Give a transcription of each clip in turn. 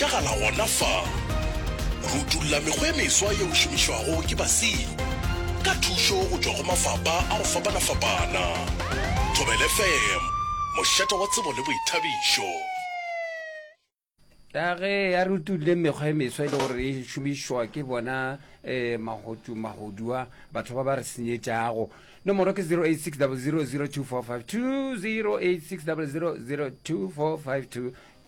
ka ga la gona fa. Re utulla mekgwa e meswa yeo e šomišwago ke basenyi ka thušo go tšwa go mafapa a go fapana-fapana. Thobela FM, mošate wa tsebo le boithabišo. Ka ge a re utulle mekgwa e meswa e le gore e šomišwa ke bona um magotu-magodua batho ba ba re senyetšago. Nomoro ke 086 000 2452, 086 000 2452.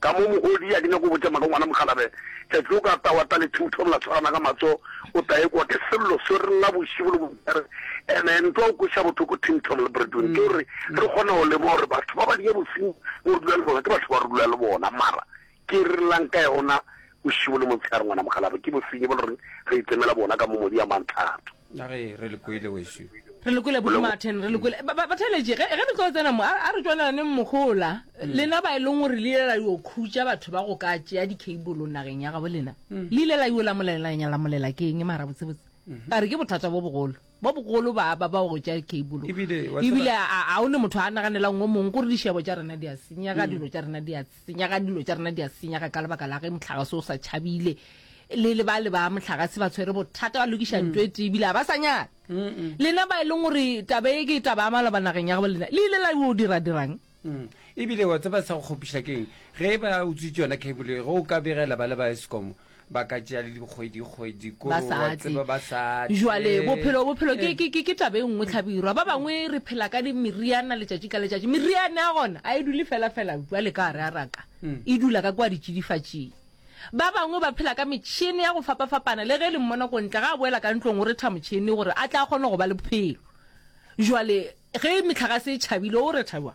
Ka mo mogodi a ke nyake go botša maka ngwana mokgalabje tšatši o ka tawa tale two thom la tshwarana ka matso o ta ekwa ke sello so re lla bošibo le bobjare ene ntwa o kweša bothoko thing thom le bredwin ke gore re kgona go leboga gore batho ba ba diya bošimo mo re dula le bona ke batho ba re dula le bona mara ke re llang ka yona bošibo le motshegare ngwana mokgalabje ke bosenyi bo le reng re itemela bona ka mo modi ya mantlhato na ge re le kwele weso re lekwele bodumaten re lekwele ba- ba- batheletše ge ge re tlo tsena mo a a re tswanelane mmogola lena ba e leng gore le ile la yo khutša batho ba go ka tšea dicable nageng ya gabo lena le ile la yo lamolelanya lamolela ke eng mara botsebotse ka re ke bothata bo bogolo bo bogolo ba ba ba go tšea dicable Ebile, wa tseba- ebile a a o ne motho a naganelang o mongwe gore dišebo tša rena di a senyega dilo tša rena di a Senyaga, dilo tša rena di a senyaga ka lebaka la ge mohlagase o sa tšhabile le le ba le ba mohlagase ba tshwere bothata ba lokiša nto e tee ebile a ba sa nyaka lena ba e leng gore taba e ke taba ya maloba nageng ya gabo lena le ile la o dira dirang ebile wa tseba sa go kgopiša keng ge ba utswitse yona cable ge o ka begela ba le ba escom ba ka tšea le dikgwedikgwedi ko ba sa wa tle tseba ba sa tle. jwale bophelo bophelo ke, ke, ke, ke taba e nngwe tlhabirwa ba bangwe re phela ka di- meriana letšatši ka letšatši meriane ya gona a e dule fela fela jwale ka gare a raka e dula ka kwa ditšidifatšing ba bangwe ba phela ka metšhene ya go fapafapana le ge le mmona ko ntle ga a boela ka ntlong o retha motšhene gore a tla kgone go ba le bophelo jwale ge metlhagase e tšhabile o retha jwang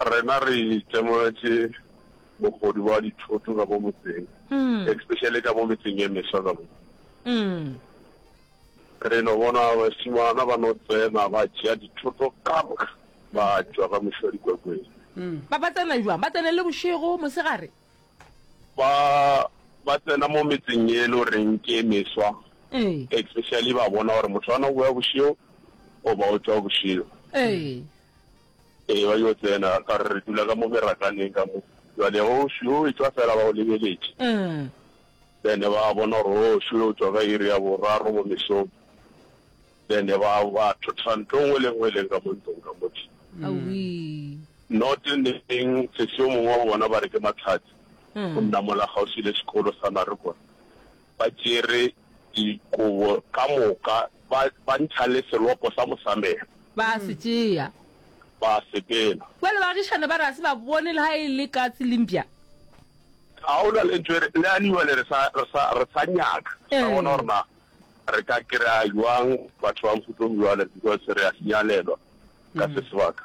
Rena re itemogetše bogodu bja dithoto ka mo motseng, especially ka mo metseng ye meswa ka mo. Re no bona bašemana ba no tsena ba tšea dithoto ka moka ba tšwa ka mošwa dikwekweng. Ba ba tsena bjang? Ba tsena le bošego, mosegare? Ba ba tsena mo metseng ye e le goreng ke e meswa, especially ba bona gore motho a no boya bošego goba o tšwa bošego. Ee, ba yo tsena, ka re re dula ka mo merakaneng ka mo, jwale o šwi o etšwa fela ba o lebeletše. Then ba bona gore o šwi o tšwa ka iri ya boraro mo mesong, then ba ba thotha ntlo nngwe le nngwe e leng ka mo ntlong ka mo tšhi. Not neng sesi yo mongwe wa bona ba re ke Matlhatsi, o nna mola kgauswi le sekolo sa Marikwa, ba tšere dikobo ka moka, ba, ba ntšha le selopo sa mosamelo. Ba a se tšea. Ba a se bena. Bjale baagišane ba re, A se ba bone le ha e le katse le mpša. A go na le ntho e re, le anyway le re sa, re sa, re sa nyaka, re sa bona gore na re ka kry-a bjang batho ba mohuta o bjalo, because re a sinyalelwa ka se sebaka.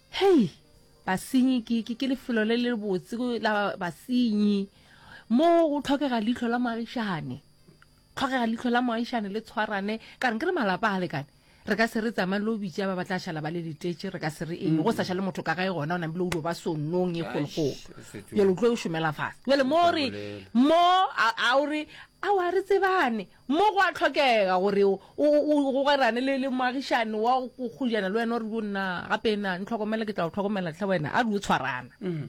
Hei! Basenyi ke, ke, ke lefelo le le botse la basenyi. Mo go tlhokega leihlo la moagišane. Tlhokega leihlo la moagišane le tshwarane. Ka reng? Ke re malapa a lekane. Re ka se re tsamaye lo bitša ba ba tla šala ba le letetše, re ka se re eng. Go sa šale motho ka gae gona, o namile o ilo ba sonnong e kgolokgolo. Bjale o tlo šomela fase. Bjale mo re, mo, a, a o re, Aowa, re tsebane. Mo go a hlokega gore o gogerane le, le moagišani wa go kgojana le wena, o re, Yo nna, gape na, ntlhokomele, ke tla go hlokomela hle wena, a re, Yo tshwarana.